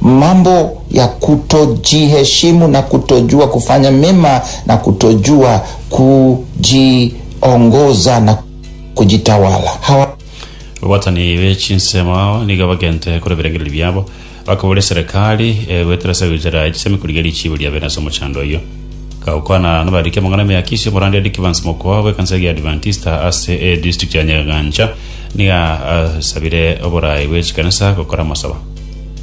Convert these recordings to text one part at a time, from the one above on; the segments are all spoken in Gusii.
Mambo ya kutojiheshimu na kutojua kufanya mema na kutojua kujiongoza na kujitawala. Hawa. Babwatani be chinsemo nigo bagente korwa ebirengererio biabo, bakaboria eserekari egoetera ase goitera echisemi korigia richiibo ria bene ase omochando oyio. Gokwana nabariri amang'ana emiakisio, Omorandia Dick Vance Mokooa bw'ekanisa eria Adventista ase edistrict ya Nyagancha nigo asabire oboraai bwe chikanisa gokora amasaba.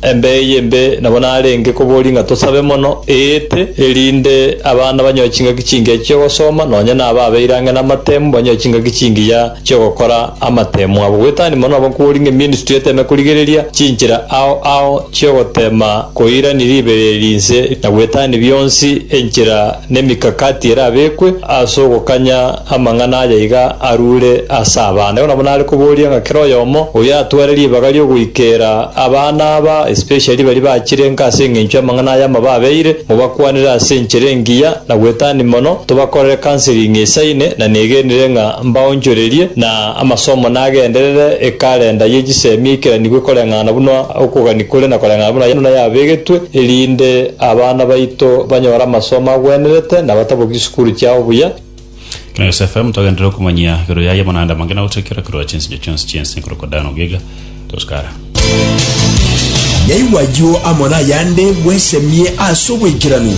Embe eye embe nabo narenge koboria ng'a tosabe mono, eete, erinde abana banyoe chingaki chingiya chi'ogosoma, nonya na aba abeire ang'e namatemu banyoe chingaki chingiya chi'ogokora amatemu abo. Goetani mono nabo nkoboria ng'a eministry eteme korigereria chinchera ao ao chi'ogotema koirania ribeera eri inse na goetani bionsi enchera na emikakati erabekwe as'ogokanya Amang'ana aya iga arure ase abana. Igo nabo nare koboria ng'a kera oyomo oyatware ribaga ri'ogoikera abana aba, especially baria bachirenka ase engencho y'amang'ana aya amababeire, mobakwanere ase enchera engiya na gwetania mono, tobakorere counseling esaine, na negenire ng'a mbaonchorerie, na amasomo nagenderere, ekalenda ye chisemi eikeranigwe koreng'ana buna okogania kore na koreng'ana buna yaino nayabegetwe, erinde abana baito banyore amasomo agwenerete na bataboki chisukuru chiabo buya. Na Yosefe motagenderere okomanyia igoro yaye buna ande amange na gotoekera korwa chinsinyo chionsi chi'ense korokwa Dani ogiga Toskara. Yaigwa ayio amo nayande bwesemie ase obwaikeranu.